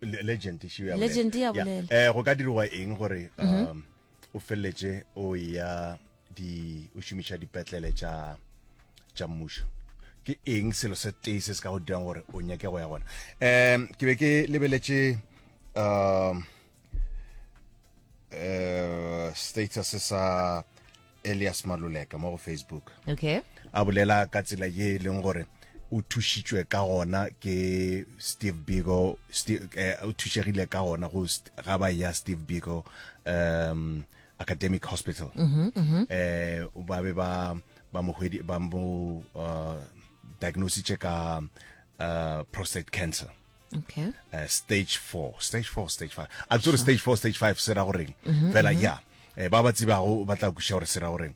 legend ešo ya legend ya bolela eh go ka dirwa eng gore mhm. um o felletse o ya di o shumisha dipetlele tša tša mmušo ke eng selo se tee se se ka go dirang gore o nyake go ya gona um ke be ke lebeletse um uh, status sa elias maluleka mo go facebook okay a bolela ka tsela ye e leng gore o thušitšwe ka gona ke steve bigo steve, eh, o thušegile ka gona go ga ba ya steve bigo um academic hospital mm -hmm, mm -hmm. eh ba be ba ba mo ba mo uh, diagnositše ka uh, prostate cancer okay uh, stage 4 stage 4 stage 5 a tsore stage 4 stage 5 se ra goreng mm-hmm, fela mm-hmm. ya eh, ba ba tsibago ba tla kuša gore se ra goreng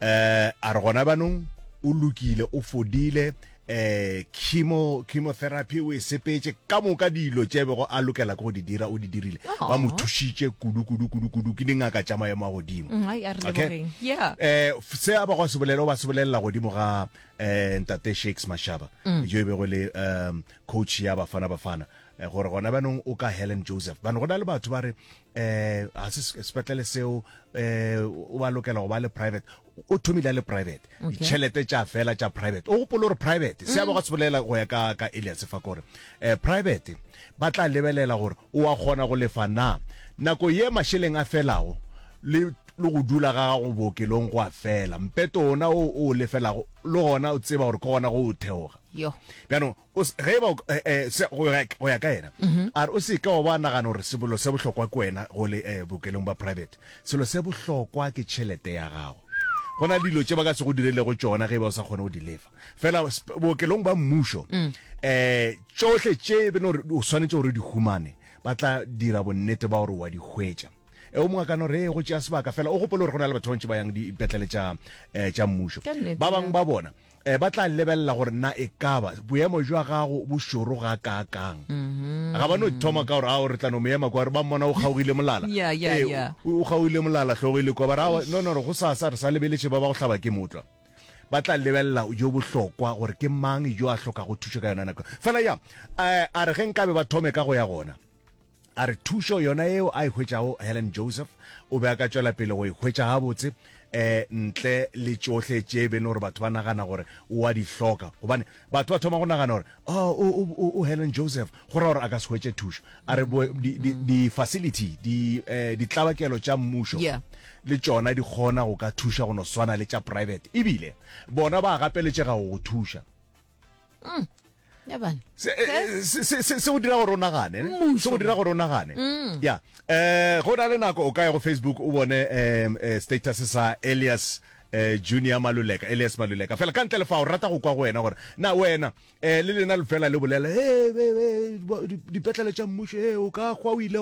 eh a re gona banong o lokile o fodile eh chemo chemotherapy o e sepetse ka moka dilo tše bego a lokela go di dira o di dirile ba mo thušitše kudu kudu kudu kudu ke dingaka tša maemo a godimo mm, okay yeah eh se a ba go se bolela ba se bolela godimo ga eh ntate Shakes Mashaba mm. jo e bego le um coach ya Bafana Bafana eh, gore gona bjanong o ka Helen Joseph bane go na le batho ba re um ga se sepetlele seo um o ba lokela go ba le private o thomile le private ditšhelete tša fela tša private o gopole gore private se abo ga se bolela go ya ka ka elias fa kore um private ba tla lebelela gore o a kgona go lefa na nako ye mašeleng a felago le le go dula ga gago bookelong go a fela mpeto ona o o lefelago le gona o tseba gore ke gona go o theoga yo bjano ge ba eh, eh, go ya ka yena mhm. a re o se ka wa ba nagana gore sebolo se bohlokwa ke wena go le eh, bokelong ba private selo se bohlokwa ke tšhelete ya gago go na dilo tse ba ka se go direlego tsona ge ba o sa kgone go di lefa fela bookelong ba mmušo um tsohle tše bene gore o tshwanetse gore di humane ba tla dira bonnete ba gore wa di hwetša e o mongwe kano re go tšea sebaka fela o gopole gore go na le batho bantši ba yang dipetlele tša um tša mmušo ba bangwe ba bona Ba tla lebelela gore na e ka ba boemo jwa gago bo šoro ga kaakang. Ga ba no thoma ka gore ao re tla no mo ema kwa, re ba mmona o kgaogile molala. Yeah, yeah, Ee, yeah. o o kgaogile molala, hlogo e le kwa. Ba re, aowa, no, no, no, go sasa re sa lebeletše ba ba go hlaba ke motlwa. Ba tla lebelela jo bohlokwa gore ke mang jo a hlokago thušo ka yona nako. Fela ya, eh, a re ge nkabe ba thome ka go ya gona, A re thušo yona yeo a e hwetšago Helen Joseph o be a ka tšwela pele go e hwetša gabotse um ntle le tšohle tše e bene gore batho ba nagana gore o a di hloka. Gobane batho ba thoma go nagana gore oh, o, o, o Helen Joseph go ra gore a ka se hwetše thušo. A re bo, di, di, di facility di, eh, ditlabakelo tša mmušo Yeah. le tšona di kgona go ka thuša go no swana le tša private ebile bona ba gapeletšega go go thuša. mm. ya bana se eh, eh, go dira gore o nagane se go dira gore o nagane mm. ya um go na le nako o ka ya go facebook o bone um status sa elias eh junior maluleka elias maluleka fela ka ntle le fa o rata go kwa go wena gore na wena eh le lena le fela le bolela eh dipetlele tša mmušo eh o ka gwa o ile